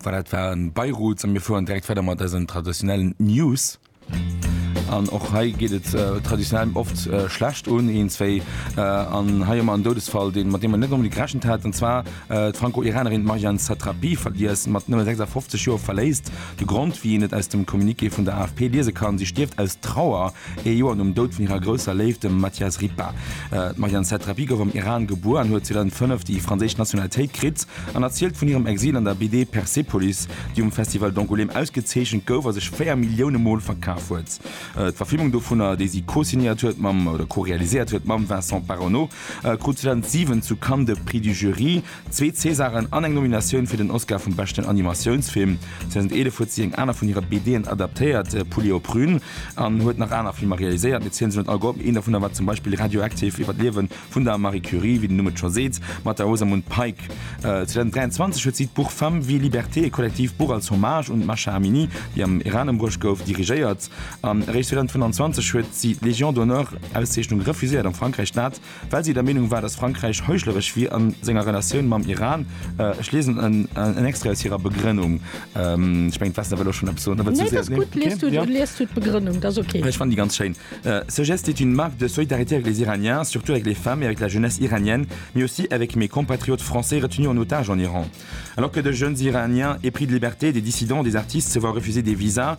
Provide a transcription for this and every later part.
Voilà, dat war Beirut a mir fueren direkt weider mat eisen traditionellen News. An och hei geet et äh, traditionell oft äh, schlecht un een zwéi äh, an hei ëmmer en Doudesfall, den mat dem man net onbedingt gerechnet hat. An zwar äh, d'Franco-Iranerin Marjane Satrapi verliess mat nëmme 56 Joer verléisst de Grond. Wéi een et aus dem Communiqué vun der AFP liese kann, si stierft aus Trauer. Ee Joer nom Doud vun hirer grousser Léift, dem Matthias Ripa. D'Marianne Satrapi gouf am Iran gebuer an huet 2005 déi franséisch Nationalitéit kritt an erzielt vun hirem Exil an der BD Persepolis, déi um Festival d'Angoulême ausgezeechent gouf a sech véier Millioune Mol verkaf huet. D'Verfilmung dovunner, déi si co-signéiert huet mam, oder co-realiséiert huet mam, Vincent Paronnaud, krut 2007 zu Cannes de Prix du Jury. Zwee Césaren an eng Nominatioun fir den Oscar vum beschten Animatiounsfilm. 2011 huet si eng aner vun hire BDen adaptéiert, Poulet aux prunes, an huet nach aner Filmer realiséiert, mee zielt se net all Gopp. Een dovunner war zum Beispill Radioactive iwwer d'Liewen vun der Marie Curie, wéi den Numm et scho seet, mat der Rosamund Pike. 2023 huet si d'Buch Femmes, vie, liberté, e kollektiivt Buch als Hommage un d'Mahsa Amini, déi am Iran ëmbruecht gouf, dirigéiert. An eréischt 2025 huet si d'Légion d'honneur-Auszeechnung refuséiert, am Frankräich d'Nat. well si der Meenung war, dass Frankräich heuchleresch wier a senger Relatioun mam Iran. Ech liesen en Extrait aus hirer Begrënnung. Ech mengen, d'Vesna wëll och schonn eppes soen. Nee, et ass gutt, lies du d'Begrënnung, dat ass ok. Ech fannen déi ganz schéin. Ce geste est une marque de solidarité avec les Iraniens, surtout avec les femmes et avec la jeunesse iranienne, mais aussi avec mes compatriotes français retenus en otage en Iran. Alors que de jeunes Iraniens épris de liberté, des dissidents, des artistes se voient refuser des visas,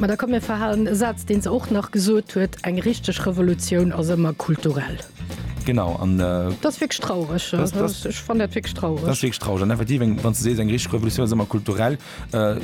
Mä da komm mir verhalen e Saz, deen se och nach gesot huet, Eng richteg Revolutioun ass ëmmer kulturell. Genau, an. Dat ass wierklech traureg. Ech fannen dat wierklech traureg. Dat ass wierklech traureg. An effektiv, wann s de sees, Eng richteg Revolutioun ass ëmmer kulturell.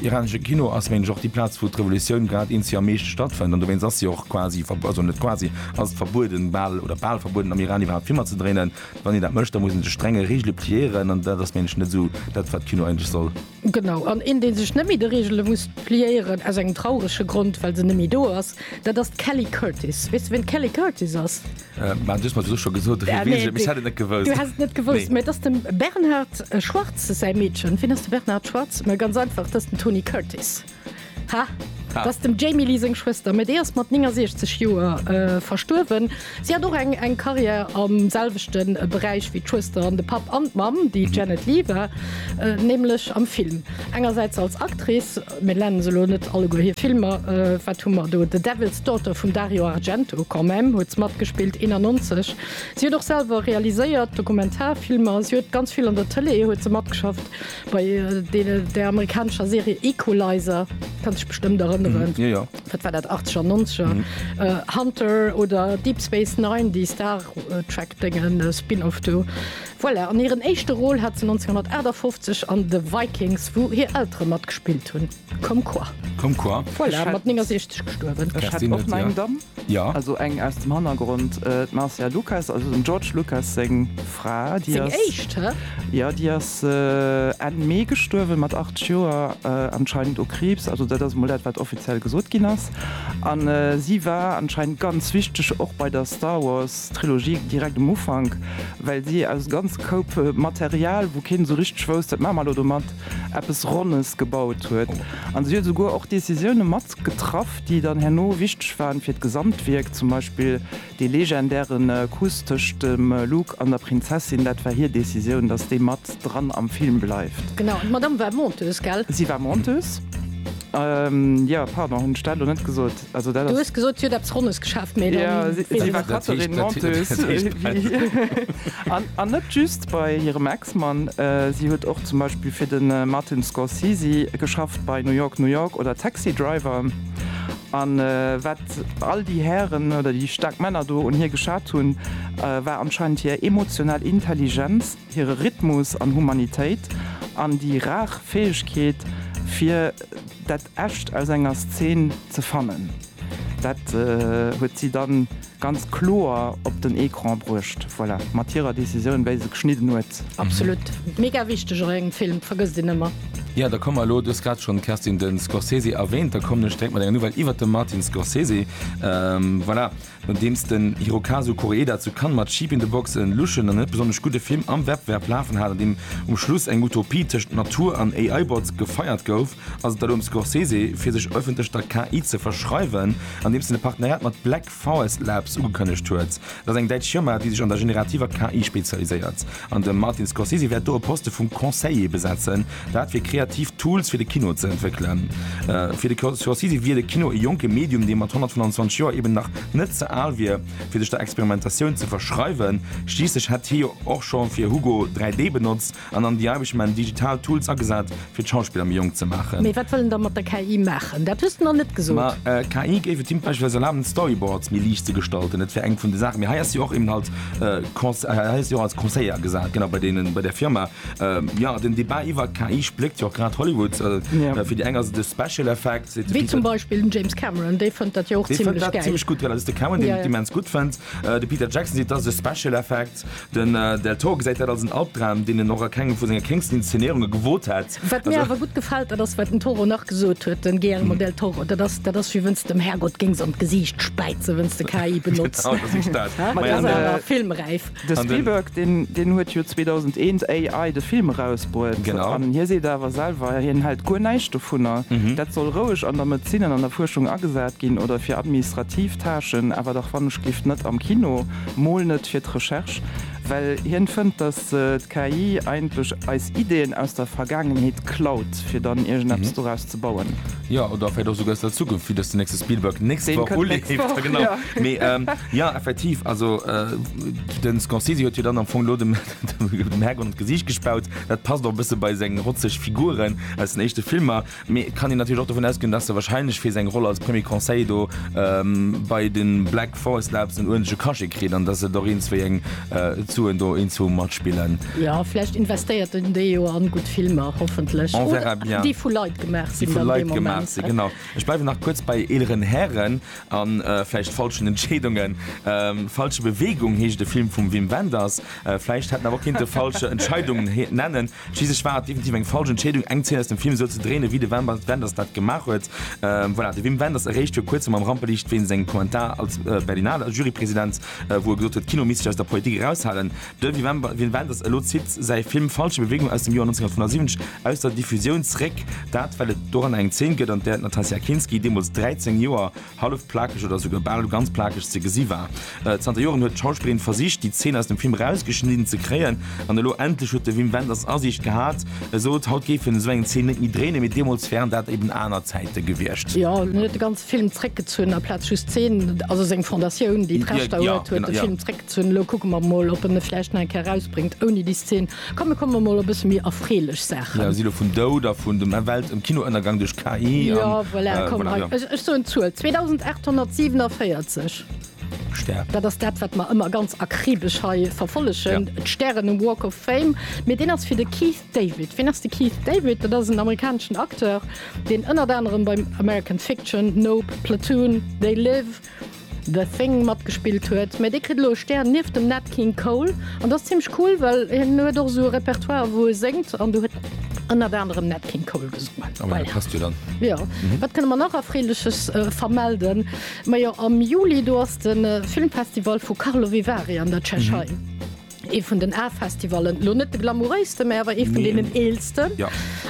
Iranesche Kino ass, meng ech, och déi Plaz, wou d'Revolutioun grad een si am meeschte stattfënnt. An dowéinst ass si och quasi, also net quasi, ass et verbueden, bal, oder bal verbueden am Iran iwwerhaapt Filmer ze dréinen. Wann een dat mécht, da muss ee sech strenge Reegele pliéieren. An dat ass, meng ech, net esou dat, wat d'Kino eigentlech soll. Genau, an een dee sech net méi de Reegele muss pliéieren, aus engem traurege Grond, well se net méi do ass, dat ass d'Kelly Curtis. Weess de ween d'Kelly Curtis ass? Mä du hues mer dat och scho gesot, ewéi weess ech et? Ech hätt et net gewousst. Du häss et net gewousst? Nee. Mä et ass dem Bernhard Schwarz säi Meedchen. Wien ass de Bernhard Schwarz? Mä ganz einfach, dat ass den Tony Curtis. Hah, dat ass dem Jamie Lee seng Schwëster, mä déi ass mat 69 Joer verstuerwen. Si hat och eng eng Karriär am selwechte Beräich wéi d'Schwëster an de Papp an d'Mamm, déi Janet Leigh war, nämlech am Film. Engersäits als Actrice, mir nennen se elo net alleguer hir Filmer, wat hu mer do, The Devil's Daughter vum Dario Argento, quand même, huet se matgespillt, 91. Si huet och selwer realiséiert Dokumentarfilmer, si huet ganz vill an der Tëlee huet se matgeschafft. Bei der amerikanescher Serie Equalizer kann sech bestëmmt erënneren. Mm, ja, ja. Dat war dat 80er, 90er. Mm. Äh, Hunter oder Deep Space Nine, déi Star äh, Track dengen äh, Spin-off do. Voilà, an hiren éischte Roll hat ze 1958 an The Vikings, wou hir Eltere matgespillt hunn. Comme quoi. Comme quoi. Voilà, mat 69 gestuerwen. Ech hätt och nach eng Damm. Ja. Also eng aus dem Hannergrond, d'Marcia Lucas, also dem George Lucas seng Fra, déi ass. Seng éischt, hä? Ja, déi ass Enn Mee gestuerwen, mat 80 Joer, anscheinend u Kriibs. Also dat ass emol dat, wat offiziell gesot ginn ass. An si war anscheinend ganz wichteg och bei der Star Wars Trilogie direkt um Ufank, well si aus ganz Koup Material, wou keen esou richteg wousst, wat maache mer elo domat, eppes Ronnes gebaut huet. An si huet esouguer och Decisioune mat getraff, déi dann herno wichteg waren fir d'Gesamtwierk, zum Beispill dee legendäre Kuss tëscht dem Luke an der Prinzessin, dat war hir Decisioun, datt dee mat dran am Film bleift. Genau, d'Madame war Monteuse, gell? Si war Monteuse. Jo, pardon, hunn ech dat elo net gesot? Also dat ass. Du hues gesot, si huet eppes Ronnes geschaaft, mee da. Si war Catherine Monteuse. An net just bei hirem Ex. Katzman. Si huet och zum Beispill fir de Martin Scorsese geschafft bei New York, New York oder Taxi Driver. A wat all déi Hären oder déi staark Männer do un hir geschat hunn, war anscheinend hir emotional Intelligenz, hire Rhythmus an Humanitéit an déi rar Fäegkeet, fir dat Echt aus enger Szen ze fannen. Dat huet si dann Ganz kloer op den Ecran bruecht, voilà, mat hirer Décisioun, wéi se geschnidden huet. Absolut. Mega wichteg och engem Film, vergësst een ëmmer. Jo, da komme mer elo, du hues grad schonn, Kerstin, de Scorsese erwähnt, da kommen ech direkt mat enger Nouvelle iwwert de Martin Scorsese. Voilà, nodeems den Hirokazu Koreeda zu Cannes mat Sheep in the Box en luschen an net besonnesch gudde Film am Wettbewerb lafen hat, an deem um Schluss eng Utopie tëschent Natur an AI-Bots gefeiert gouf, Ass et da lo um Scorsese, fir sech ëffentlech der KI ze verschreiwen, andeems en e Partenariat mat Black Forest Labs ugekënnegt huet? Dat ass eng däitsch Firma, déi sech an der generativer KI spezialiséiert. An de Martin Scorsese wäert do e Poste vum Conseiller besetzen, dat fir kreativ Tools fir de Kino ze entwéckelen. Fir de Scorsese wier de Kino e jonke Medium, dee mat 125 Joer eben nach net ze al wier, fir sech der Experimentatioun ze verschreiwen. Schliisslech hätt hie jo och scho fir Hugo 3D benotzt. An an déi Aarbecht man digital Tools agesat, fir d'Schauspiller méi jonk ze maachen. Mee wat wëll en da mat der KI maachen? Dat hues de nach net gesot. Ma KI géif et him beispillsweis erlaben, d'Storyboards méi liicht ze gestalten. Dat wär eng vun de Saachen. Mee hei ass jo och eben halt Cons, hei ass jo och als Conseiller agesat, genau, bei deenen, bei der Firma. Jo, den Debat iwwer d'KI spléckt jo och grad Hollywood. Fir déi eng ass et e Special Effect, seet de Peter. Wéi zum Beispill den James Cameron, dee fënnt dat jo och zimlech gäil. Dee fënnt dat zimlech gutt, well dat ass de Cameron, deen d'Demens gutt fënnt. De Peter Jackson seet, dat ass e Special Effect. Den Del Toro gesäit dat als en Albdram, deen en och a kengem vu senge kéngsten Inszenéierunge gewot hätt. Wat mir awer gutt gefält, dat ass wat den Toro nach gesot huet, de Guillermo del Toro, dat ass, dat ass wéi wënns de dem Härgott géings an d'Gesiicht späizen, wënns de KI benotz. Genau, dat ass dat. Mä dat ass awer filmräif. De Spielberg, deen, deen huet jo 2001 AI, de Film, erausbruet. Genau. An hie seet awer selwer, hien hält guer näischt dovunner. Dat soll roueg an der Medezin an an der Fuerschung agesat ginn oder fir administrativ Tâchen, awer dach wann ech géif net am Kino. Mol net fir d'Recherche, well hien fënnt, dass d'KI eigentlech eis Ideen aus der Vergaangenheet klaut, fir dann iergendeppes doraus ze bauen. Jo, oder vläit och esouguer aus der Zukunft, wéi dass den nächste Spielberg d'nächst Woch uleeft. Deen kënnt d'nächst Woch, jo. Mee jo, effektiv, also de Scorsese huet jo dann am Fong elo dem Herrgott an d'Gesiicht gespaut. Dat passt och e bësse bei seng rotzeg Figuren aus den éischte Filmer. Mee et kann een natierlech och dovun ausgoen, dass e wahrscheinlech fir seng Roll als Premier Conseiller do bei de Black Forest Labs en uerdentlche Cachet kritt an dass et och eens wéi eng Suen do eenzehoe mat spillen. Jo, vläicht investéiert en déi jo a gutt Filmer, hoffentlech, déi vu Leit gemaach sinn. Déi vu Leit gemaach sinn, genau. Ech bleiwen nach kuerz bei eeleren Hären a vläicht falschen Entscheedungen. Falsche Bewegung heescht e Film vum Wim Wenders. Vläicht hätt en awer och kinnte Falsche Entscheidungen nennen Schliisslech war et definitiv eng falsch Entscheedung, eng Zeen aus dem Film esou ze dréinen, wéi de Wim Wenders dat gemaach huet. Voilà, de Wim Wenders eréischt viru kuerzem am Rampeliicht wéinst engem Kommentar als Berlinale Jurypresident, wou e gesot huet, d'Kino misst sech aus der Politik eraushalen. De Wim Wenders elo zitt säi Film Falsche Bewegung aus dem Joer 1975 aus der Diffusioun zréck. Dat, well et doranner eng Zeen gëtt, an där d'Natasja Kinski, deemools 13 Joer, hallef plakeg oder esouguer bal ganz plakeg ze gesi war. Zanter Joren huet d'Schauspillerin versicht, déi Zeen aus dem Film erausgeschnidden ze kréien. An elo endlech huet de Wim Wenders Asiicht gehat. E sot, haut géif hien esou eng Zeen net méi dréinen, mee deemools wären dat eben aner Zäite gewiescht. Jo, hien huet de ganze Film zréckgezunn, aplaz just d'Zeen, also seng Fondatioun, déi d'Rechter huet, huet de Film zréckgezunn. Elo kucke mer emol, ob en e vläicht nach eng Kéier erausbréngt ouni déi Zeen. Komm, mir kommen emol op e bësse méi erfreelech Saachen. Ja, si lo vun Doud a vun dem Welt ëm Kinoënnergang duerch KI an. Jo, voilà, komm, hei, ech soen d'Zuel, 2.847. Stär. Dat ass dat, wat mer ëmmer ganz akribesch hei verfollegen, d'Stären um Walk of Fame. Mee deen ass fir de Keith David. Ween ass de Keith David? Dat ass en amerikaneschen Acteur, deen ënnert anerem beim American Fiction, Nope, Platoon, They Live, The Thing matgespillt huet, mä dee kritt elo e Stär nieft dem Nat King Cole an dat ass zimlech cool, well hien huet och esou e Repertoire wou e séngt an do huet ënnert anerem Nat King Cole gesongen. Ah, voilà. Passt jo dann. Jo. Mhm. Wat kënne mer nach Erfreeleches äh, vermelden? Majo am Juli do ass den äh, Filmfestival vu Karlovy Vary an der Tschechei. Mhm. Ee vun den A-Festivallen, elo net de glamouréisten, mä awer ee vun deenen eelsten.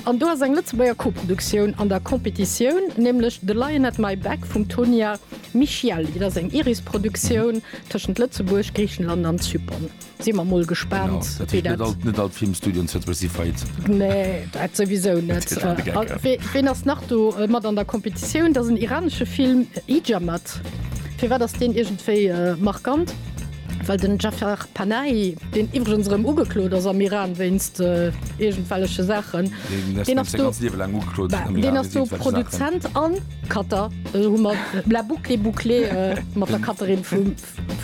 An do ass eng Lëtzebuerger Co-Produktioun an der Competitioun, nämlech The Lion at My Back vum Tonia Michielli. Dat ass eng iris Produktioun tëschent Lëtzebuerg, Griichenland an Zypern. Si mer mol gespaant, wéi dat. Genau, net all d'Filmstudioen zu Lëtzebuerg si faillite. Nee, dat souwisou net. Ween ass nach do mat an der Competitioun? Dat ass en iranesche Film, Hijammat. Firwat ass deen iergendwéi markant? Well den Jafar Panahi, deen iwwregens erëm ugeklot ass am Iran wéinst iergendwelleche Saachen, deen ass do, ben, deen ass do Produzent a Cutter. Elo hu mer la boucle bouclée mat der Cutterin vum,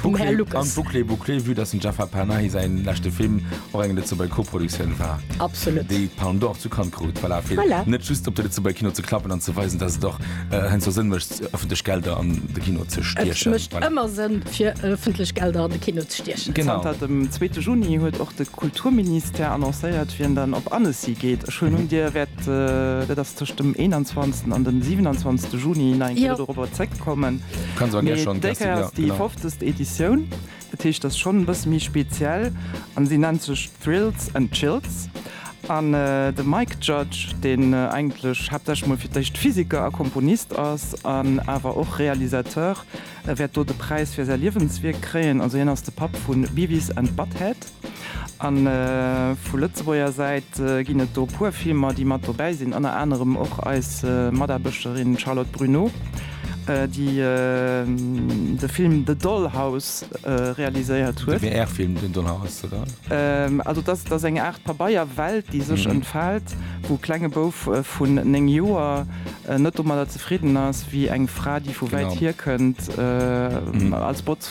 vum Här Lucas. Boucle an bouclée bouclée, vue dass dem Jafar Panahi säi leschte Film och eng Lëtzebuerger Koproduktioun war, Absolut. déi d'Palme d'Or zu Cannes krut, voilà, fir Voilà. net just op de Lëtzebuerger Kino ze klappen an ze weisen, dass et och heiansdo Sënn mécht, Ëffentlech Gelder an de Kino ze stiechen. Et mécht ëmmer Sënn, fir ëffentlech Gelder an de Kino ze stiechen. Genau. Zanter dem zweete Juni huet och de Kulturministère annoncéiert, wien dann op Annecy geet. Ech huelen un, Dir wäert, dat ass tëscht dem 21 an dem 27 Juni, nach eng Kéier dorobber zréckkommen. Kann sou eng Kéier schonn. Mee déi Kéier ass déi fofzegst Editioun. Dat heescht, dat ass schonn e bësse méi speziell an si nennt sech Thrills and Chills. An de Mike Judge, deen eigentlech haaptsächlech mol fir d'éischt Physiker a Komponist ass an awer och Realisateur, wäert do de Präis fir säi Liewenswierk kréien. Also hien ass de Papp vu Beavis and Butthead. A vu Lëtzebuerger Säit ginn et do e puer Filmer, déi mat dobäi sinn, ënner anerem och eis Mataarbechterin Charlotte Bruneau, déi de Film The Dollhouse realiséiert huet. De WR-Film The Dollhouse, oder? Also dat ass eng Aart Pabeierwelt, déi sech entfält, wou e klenge Bouf vun néng Joer net domadder zefridden ass, wéi eng Fra, déi vu wäit hierkënnt, als Botz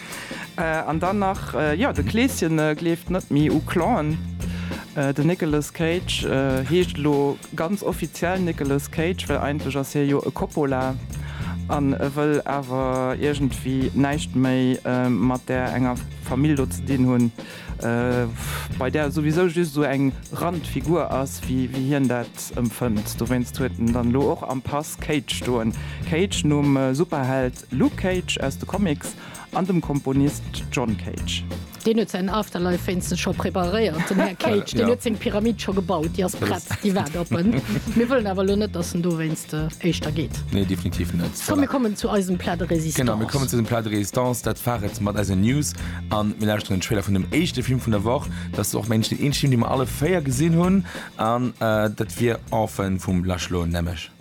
An dann nach, jo, de Kleeschen gleeft net méi u Clown. Den Nicolas Cage heescht elo ganz offiziell Nicolas Cage, well eigentlech ass hie jo e Coppola an e wëll awer iergendwéi näischt méi mat där enger Famill do ze dinn hunn, bei där e souwisou just esou eng Randfigur ass, wéi hien dat empfënnt. Dowéinst huet en dann elo och am Pass Cage stoen, Cage nom Superheld Luke Cage aus de Comics an dem Komponist John Cage. Deen huet säin Afterlife wéinstens scho preparéiert, den Här Cage. Deen huet seng Pyramid scho gebaut, déi ass prett, déi waart op en. Mir wëllen awer elo net, dass en dowéinst éischter geet. Nee, definitiv net. Komm, mir kommen zu eisem Plat de résistance. Genau, mir kommen zu eisem Plat de résistance. Dat war et mat eisen News. A mir lauschteren den Trailer vun dem éischte Film vun der Woch. Dat ass och, mengen ech, deen eenzeg Film, dee mer alle véier gesinn hunn. An dat wier Orphan vum Lars Schloen, nämlech.